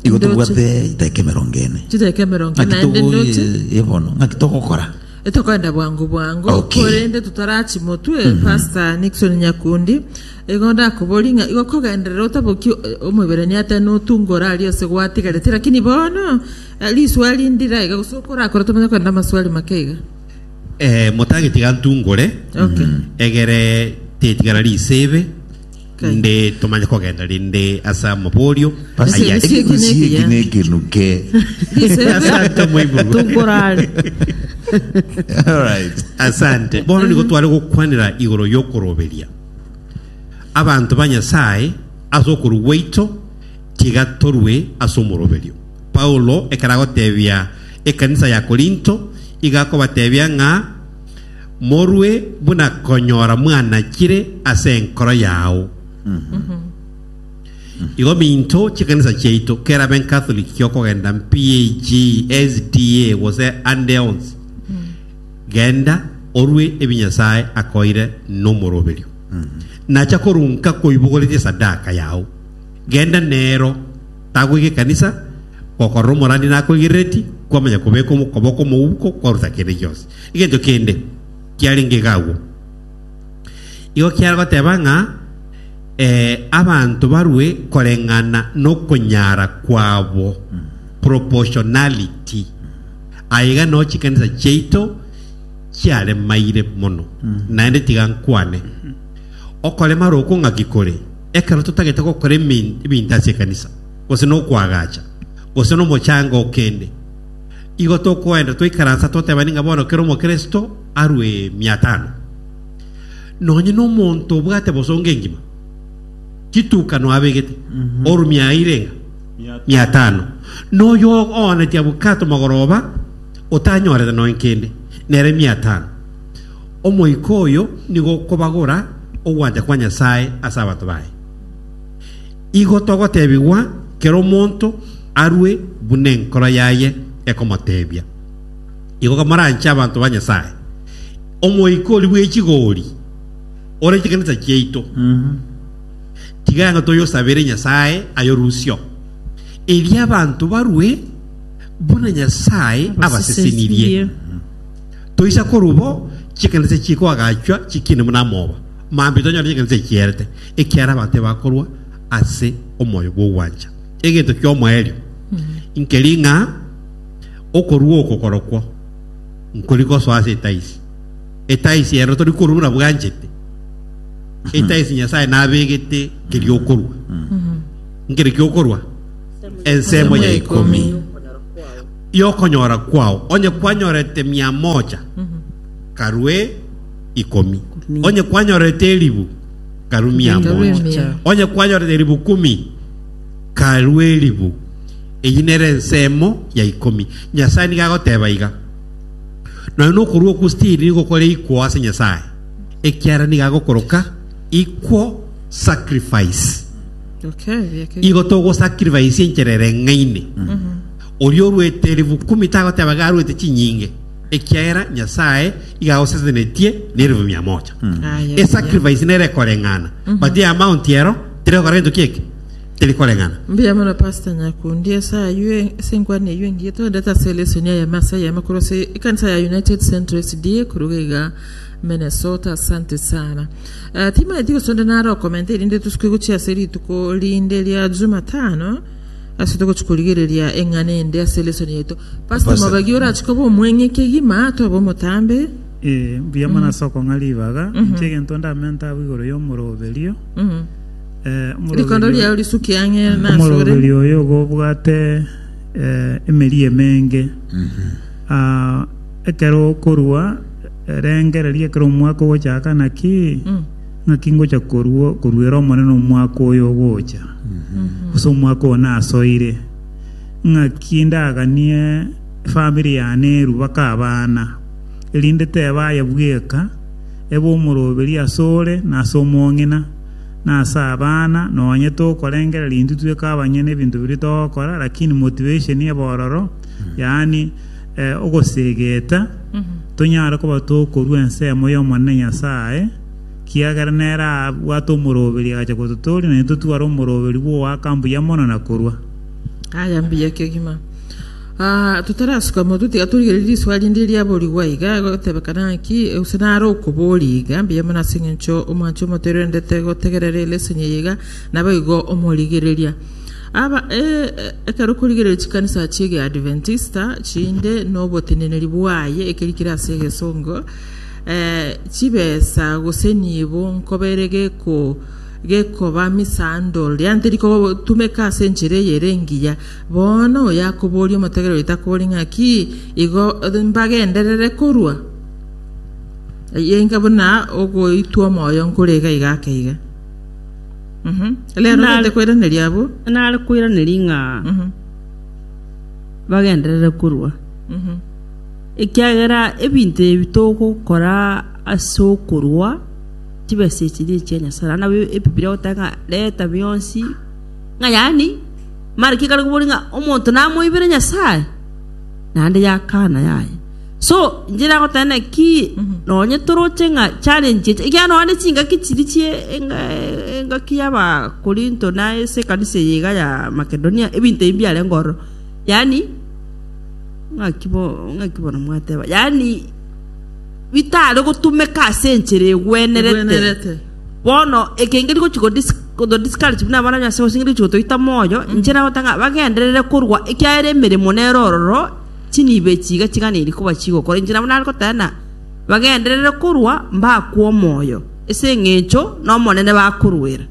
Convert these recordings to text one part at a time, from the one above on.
Igo tobwate eitaika emerongo ene. Naki togoye ye bono? Naki togokora? Tokoenda bwango bwango Okay. korende totarachimotwe pastor Nixon Nyakundi igo ndakobori ng'a igo kogenderera otaboki o- omoiberania ate notunga orarie ase gwatigarete lakini bono eh, riswali ndire aiga gose okorakore tomanye kogenda amaswali make iga Eh, motageti gantungore Okay. egere tetigara risebe Okay. nde tomanye kogenda rinde asa moborio Basi, Aya- Ese- ese- basi eki eki nekenuke. Asante, Mwaibu. tungorare All right. asante bono nigo tware gokwanera igoro y'okoroberia abanto ba nyasaye ase okoru gwaito tiga torue ase omoroberio paulo ekero agotebia ekanisa ya Korinto, igakobatebia ng'a morue buna konyora mwanachire ase enkoro yao. Igo minto chi'ekanisa chiaito, kerabe Encatholic gi'okogenda PAG, SDA, gose ande onsi, genda orue ebi Nyasae akoeire nomoroberio. Nacha korunka koibogoretie esadaka yao, genda nero. Tagoika ekanisa, gokorora omorani nakoigerereti, kwamanya kobeka okoboko omouko, kwaruta kende gionsi. Egento kende kiarenge iga agwo. Igo kiare goteba ng'a eh, abanto barue koreng'ana nokonyara kwabo, proportionality. Aye iga no chikanisa chiaito chiaremaire mono. Naende tiga nkwane, okoremara oko ng'aki kore? Ekero totagete gokora ebinto ase ekanisa, gose nokoagacha, gose nomochango o kende, igo tokoenda twaikaransa totebani ng'a bono kera omokristo arue mia tano. Nonye nomonto obwate bosongo engima, chitukano abegete, orumia aeire ng'a mia tano. Noyo ooneti abwate amagoroba otanyorete nonya kende, nere mia tano. Omoika oyo nigo okobagora ogwancha kwa Nyasae ase abanto baye. Igo togotebigwa kera omonto arue buna enkoro yaye ekomotebia. Igo kamoranche abanto ba Nyasae. Omoika oria bwe chigori ore chikanisa chiaito, tiga ng'a toyosabere Nyasae ayorusio, erio abanto barue buna Nyasae abasesenirie. Toisa korwa bo chikanisa chikoagachwa chikiine buna amoba, mambia tonyore chikanisa echierete, ekiara abanto ebakorwa ase omoyo bw'ogwancha. Egento ki'omoerio inkeri ng'a okorua oko korokwo nkori gosoa ase etaisi, etaisi ero tori korua buna bwanchete, etaisi Nyasae nabegete nkeri okorua. Nkeri ki'okorua ensemo ya ikomi. y'okonyora kwao, onye kwanyorete mia moja, karue ikomi, onye kwanyorete eribu, karue mia moja, onye kwanyorete eribu kumi, karue eribu. Eyi nere ensemo ya ikomi. Nyasae nigo agoteba iga, Nonya nokorua okwo stiri nigo kore ikwo ase Nyasae, ekiagera nigo agokoroka ikwo sacrifice. Okay, biakeire. Igo togosacrifice enchera ereng'aine. Oria orwete erifu ikomi tagoteba iga arwete chinyinge, ekiagera Nyasae iga agosesenetie nerifu mia mocha. Ah, yes, Esacrifice nere ekoreng'ana, but eye amount ero terigokora gento ki eke, terikoreng'ana. Mbuya mono Pastor Nyakundi, ase ayio e- ase enkwana eyio engiya togondete ase lesson ya yame ase yame korwa ase ekanisa ya United Central SDA korwa iga Minnesota, asante sana. Eh, timaeti gosonda naro okomenta erinde tosuke gochia ase rituko rinde ria Jumatano. Ase togochi korigereria eng'ana ende ase lesson yaito, Pastor Pastor. Mabagi orachi koba omweng'e kegima tobe omotambe. Eh, mbuya mono ase okong'a ribaga inche egento ndamente abwo igoro y'omoroberio Mhm. eh, omoroberio- Rikondo riao risuki ang'e na asore. omoroberio oyo igo obwate eh, emeri emenge Ah, ekero okorua eh, rengereria ekero omwaka ogochaka naki Mm. Naki ngocha koruera Omonene omwaka oyo ogocha, gose omwaka oyo nasoire, ng'aki ndaganie efamiri yane eru baka abana, erinde teba aye bweka ebe omoroberi ase ore, na ase omong'ina, na ase abana, nonye tokorengereria intwe tweka abanyene ebinto biria togokora, lakini motivation ebororo, yaani eh, ogoseegeta, tonyare koba tokorua ensemo y'Omonene Nyasae, kiagera nere abwate omoroberi agacha gototooria, na intwe tware omoroberi bw'ogoaka mbuya mono na korua. Aya mbuya kegima. Ah, totarasuka motwe tiga torigere riswa rinde riaborigwa iga gotebekana ng'aki use nare okoboria iga mbuya mono ase eng'encho omwanche omoterendete gotegerera ere esenyeye iga naboigo omorigereria Aba e, ekero korigereria chikanisa chi'Egeadventista chinde noboteneneri bwaye ekeri kire ase egesongo, e, chibesa gose nibo nkobere geko gekoba misandol yaani teri kotumeka ase enchera eye ere engiya. Bono oyo akoboria omotegereri oyo takobori ng'aki igo e, mbagenderere korwa? Eye enga buna ogoitwa omoyo nkore iga iga ake iga. Mhm. Rero Nare- tete koiraneria abwo. nare koiraneria ng'a Mhm. bagenderere korua Mhm. ekiagera ebinto ebi togokora ase okorua chibesa echi nichia nyasae naende nabwo ebibiria egoteba ng'a reta bionsi ng'a yaani mara ki ekare koboria ng'a omonto namoibere nyasae naende yakana yaye So, inche nagoteba naki nonye toroche ng'a challenge eria, ekiagera nonya chingaki chiria chie enga engaki y'Abakorinto na ase ekanisa eye iga ya Makedonia, ebinto ebi mbiarenge ororo. Yaani ng'aki bo ng'aki bono mwateba, yaani bitare gotumeka ase enchera egwenerete. Egwenerete. Bono ekenge rigochi ko dis koto discourage buna abana ase gose rigochi gotoita moyo, inche nagoteba ng'a bagenderere korwa ekiagera emeremo nere ororo, Chinibe chiiga chiganeiri koba chigokora, inche nabo nare goteba ng'a bagenderere korwa mbakwe omoyo, ase engencho n'Omonene bakoruera.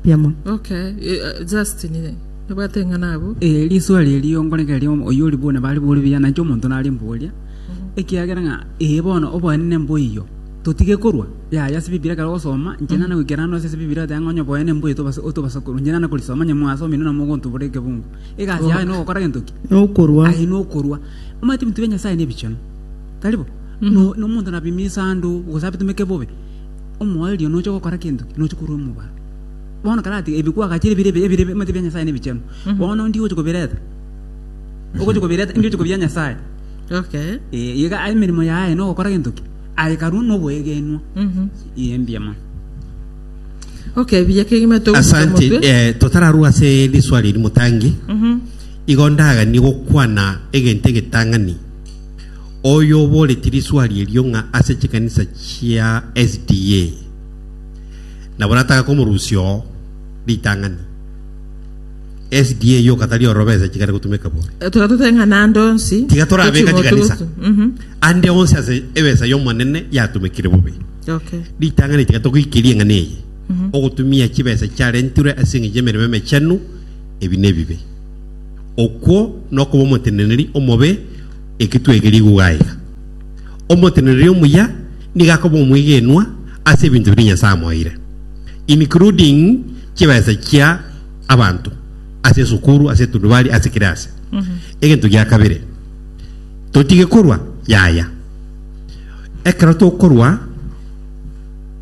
Biamoni. Okay, eh, eh, Justin, eh, nabwate eng'ana abwo. Eh, riswali eri onkoregeria omo- oyio ori buna bari bori buya nainche omonto nare mboria ekiagera ng'a ee bono oboenene mboiyo totige korwa yaya ase bibiria ekero ogosoma inche nana goikera ande gose ase bibiria oteba ng'a onye oboenene mboiyo tobase otobasa korwa inche nana korisoma onye mwasomire na mogontubora ekebungo egasi yaye nogokora gento ki nokorwa aye nokorwa omanyete ebinto bia nyasaye nebichenu tari bo No- nomonto nabima esando gose abitomeke bobe omoerio nocha gokora gento ki nocha korwa omobaro bono karati ebi kwagachire ebire ebi- ebire omanyete ebia nyasaye nebichenu bono ndi gocha kobireta ogocha kobireta ndi gocha kobia nyasaye okay Eh, iga aye emeremo yaye nogokora gento ki aye karwa noboegenwa Mhm. iye mbuya mono Okay, buya kegima togusa Asante omotwe. eh, totararwa ase riswali eri motangi igo ndaganie gokwana egento egetang'ani oyo oboreti riswali erio ng'a ase chikanisa chia sda nabo nataka komorusia oo ritang'ani sda yoka tari orobesa chigare gotumeka bore Eh, Tiga toteng'a nande onsi. tiga torabeka Toching'o chikanisa togotu- Mhm. ande onsi ase ebesa y'omonene yatumekire bobe Okay. Ritang'ani tiga togoikerie eng'ana eye. Ogotumia chibesa chiarentirwe ase eng'encho y'emeremo emechenu, ebi nebibe. Okwo nokoba omoteneneri omobe, eki twegeire igwo gaiga. Omoteneneri omuya nigo akoba omwegenwa ase ebinto biria Nyasae amoeire, including chibesa chia abanto ase esukuru, ase etundubari, ase kera ase. Egento gia kabere, totige korwa, yaya. Ekero tokorwa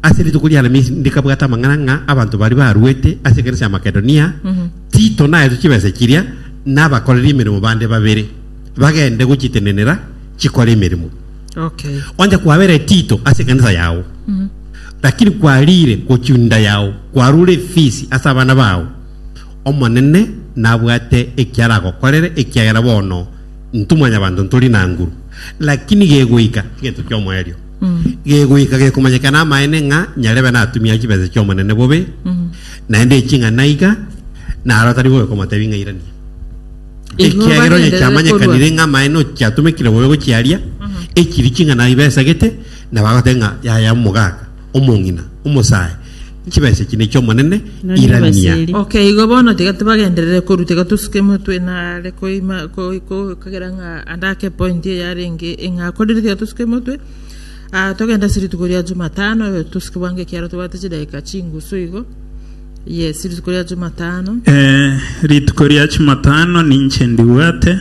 ase rituko ri'Alamisi ndikabwata amang'ana ng'a abanto baria baruete ase ekanisa ya Makedonia, Tito naetwe chibesa chiria na abakoreri emeremo bande babere bagende gochitenenera chikore emeremo. Okay. Onye kwabere Tito ase ekanisa yao, lakini kwarire gochia enda yao, kwarure efisi ase abana bao, Omonene nabwate ekiaragokorere, ekiagera bono Ntimwanyabanto ntori na nguru, lakini gegoika egento ki'omoerio, gegoika gekomanyekana amaene ng'a nyarebe natumia chibesa chi'Omonene bobe, naende eching'ana iga, naro tari bobe komotebi ng'a irania. Igo Ekiagera onye bagenderere chiamanyekanire korwa. ng'a amaene ochiatomekire bobe gochiaria, echiri ching'ana ibesagete, nabo agotebi ng'a yaya omogaka. Omong'ina, omosae, nchibesa chine chi'Omonene, irania. Ok, igo bono tiga tibagenderere korwa, tiga tosuke emotwe ino are koima, ko, ko, kagera ng'a ande ake epointi eye arenge ing'akorire, tiga tosuke emotwe aa togende ase rituko ria Jumatano, tosuke bwango ekiagera tobwate chidakika chingusu igo. Yes, rituko ria Jumatano. Eh, rituko ria Jumatano ninche ndibwate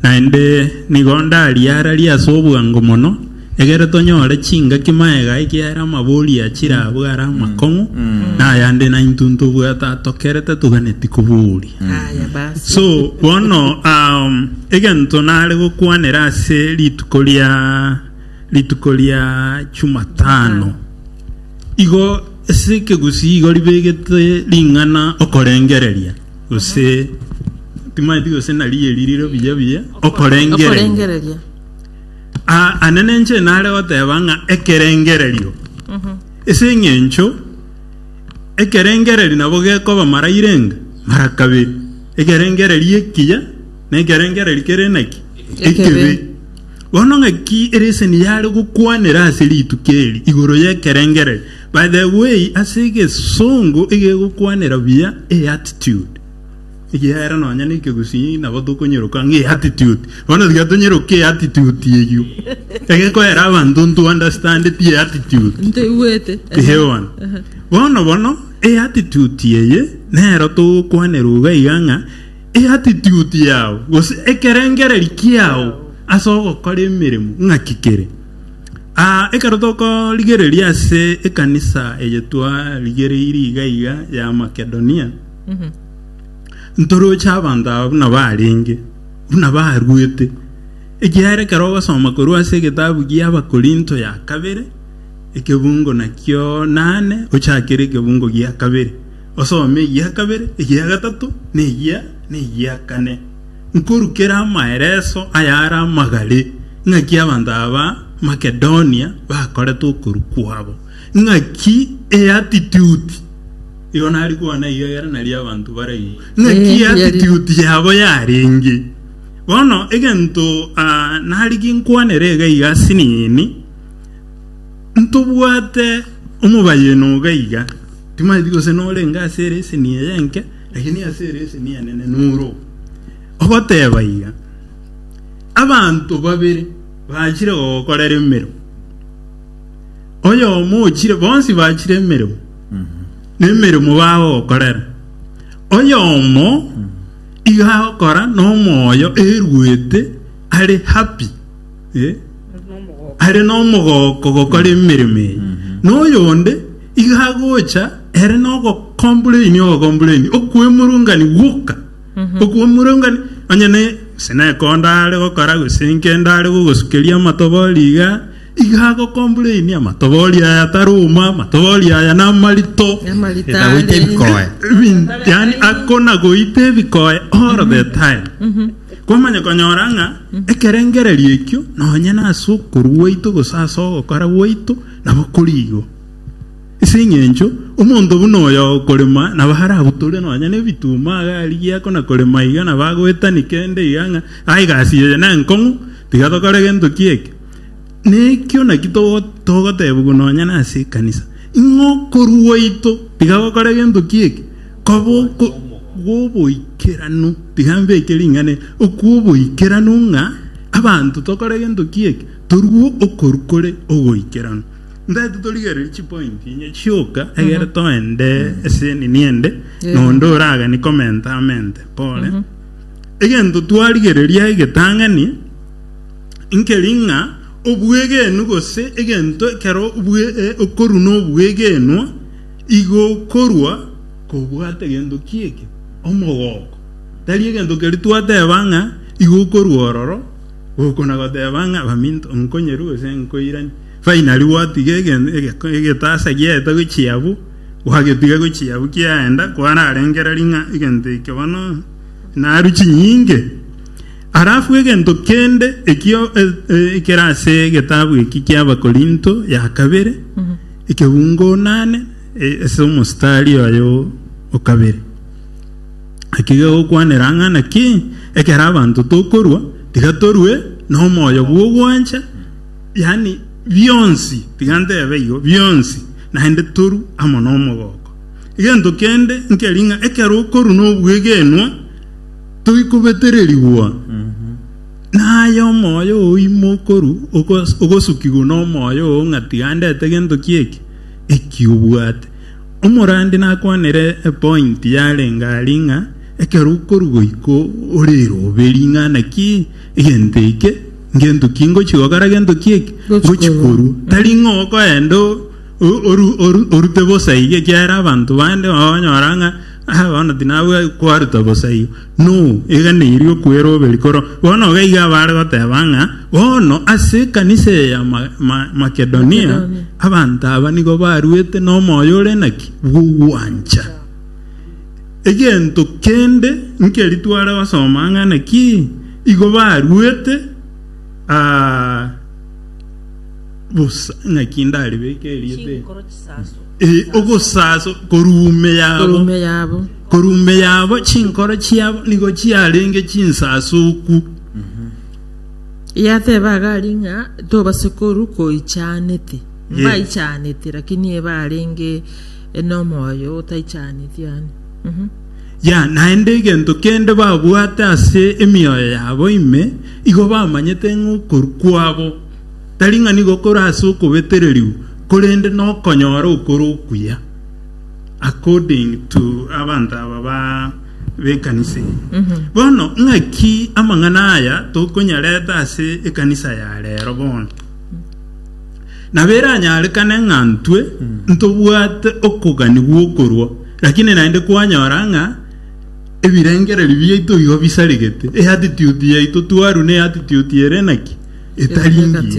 naende nigo ndariara ria ase obwango mono egere tonyore chingaki maega ekiara amabori achira abwo ara amakong'u na ayande nainto ntobwate atokerete toganeti koboria Aya basi. so bono um, egento nare gokwanera ase rituko ria rituko ria Jumatano igo Ase ekegusii igo ribegete ring'ana okorengereria, gose timaeti gose narieeri rire buya buya okorengereria. okorengereria Ah, ane nenche nare goteba ng'a ekerengererio ase eng'encho ekerengererio nabo gekoba mara irenge mara kabere ekerengererio ekiya na ekerengererio kere naki? Ekebi. Bono ng'aki ereseni yare gokwanera ase rituko eri igoro y'ekerengererio? By the way, ase egesongo egegokwanera buya e attitude. Ekiagera nonya na ekegusii nabo tokonyeroka ng'e attitude. Bono tiga tonyeroke e attitude eyio. Egekoera abanto nto understand ti e attitude. ntoigwete Ehewan. Bono bono e attitude eye nero togokwanera uga iga ng'a eatitude yao gose ekerengereri kiao ase ogokora emeremo ng'aki kere aa ekero tokorigereria ase ekanisa eye twarigereiri iga iga ya Makedonia ntoroche abanto aba buna barenge buna baruete ekiagera ekero ogosoma korwa ase egetabu gia Abakorinto ya kabere ekebungo nakio nane ochakere ekebungo gia kabere Osome eyio ya kabere, eyio ya gatato, na eyio, na eyio ya kane. Nkorukere amaereso ayare amagare, ng'aki abanto aba Makedonia bakorete okorua kwabo, ng'aki eatitude, igo nari koana eyio egere nario abanto baraigwe, ng'aki eatitude yabo yarenge. Bono egento ah, nari ginkwanere iga iga ase nini, Ntobwate omobayeno oga iga, timaeti gose norenge ase ere esenia yenke, lakini ase ere esenia enene noro ogoteba iga, Abanto babere bachire gogokorera emeremo, oyomo ochire, bonsi bachire emeremo, na emeremo bagokorera, oyomo iga agokora nomoyo eruete are happy. Eh? are n'omogooko gokora emeremo eye na oyonde iga agocha ere nogokombureni ogokombureni okwemurungani gwoka okwemurungani onye ne sinekonda are gokora gose nkenda are gogosukeria amatobori iga iga agokombureni amatobori aya taroma amatobori aya namarito Amarito Etagoita are. ebikoe Ebin- yani akona goita ebikoe all the time Komanya konyora ng'a ekerengererio ekio nonye nase okorua gwaito gose ase ogokora gwaito nabo kori igo. Ase engencho omonto buna oyo okorema nabo arabutorwe nonye nebituma iga arigie akona korema iga nabo agoetani kende iga ng'a aye egasi eye nenkong'u tiga tokore gento kieke. Nekio naki togotebiwa nonye nase ekanisa, ing'o okorua gwaito tiga gokore gento kieke. Koboko gw'oboikeranu, rigambe eke ring'ane, okw'oboikeranu ng'a abanto tokore gento ki eke, torue okoru kore ogoikeranu. Ntaete torigererie chipointi enye chioka egere toende ase enini ende, na onde oragani komenta amente pore. Egento twarigereria egetang'ani, nkeri ng'a obwegenu gose egento ekero bwe- eh, okoru na obwegenwa, Igo korwa kobwata gento ki eke omogooko, tari egento keria twateba ng'a igo korwa ororo, gokona goteba ng'a baminto nkonyeru gose nkoirani. Finally gwatiga egetasa giaeta gochia abwo, gwagetiga gochia abwo kiaenda kwararengereria ng'a egento eke bono narue chinyinge. Alafu egento kende ekio ekere ase egetabu eki ki'Abakorinto ya kabere. Ekeungo naane ase omositari oye o kabere. Naki gegokwanera ng'a naki ekero abanto tokorua, tiga torue nomoyo bw'ogwancha, yaani bionsi, tiga ntebe igo, bionsi, naende toru amo nomogooko. Egento kende nkeri ng'a ekero okorua nobwegenwa, toikobetererigwa. Na aye omoyo oo ime okoru, ogosukigwa nomoyo oo, ng'a tiga ndete gento ki eki, eki obwate. Omorandi nakwanire epointi yarenge aria ng'a, ekero okoru goika orirobe ring'ana ki egento eke, ngento ki ngochia gokora gento ki eki, ngochia korua. Tari ng'a okoenda orute bosa iga, ekiagera abanto bande okonyora ng'a bono tinabwati kwaruta bosa igo. No, egena erio ri'okwera obe rikoro. Bono iga iga baare goteba ng'a bono ase ekanisa eye ya Makedonia abanto aba nigo baruete nomoyo ore naki? Bw'ogwancha. Egento kende nkeri tware gosoma ng'a naki igo baruete bosa. Naki ndaribeke erieta eri. Eh, ogosaso koruume yabo korume yabo koruume yabo chinkoro chiabo nigo chiarenge chinsasuku yateba agari ng'a tobase koru koichanete Yeah. mbaichanete lakini ebarenge enomoyo otaichaneti yani Mhm. ya naende egento kende babwate ase emioyo yabo ime igo bamanyete ng'okoru kwabo Tari ng'a nigo kore ase okobetereriu, korende nokonyora okore okuya according to abanto aba ba b'ekanisa eye. Bono ng'aki amang'ana aya tokonyareta ase ekanisa ya rero bono? Nabo eranyarekane ng'a ntwe ntobwate okogania gw'okorwa, lakini naende kwanyora ng'a ebirengererio biaito igo bisaregete, eatitude yaito twarwa neatitude ere naki? Etari engiya.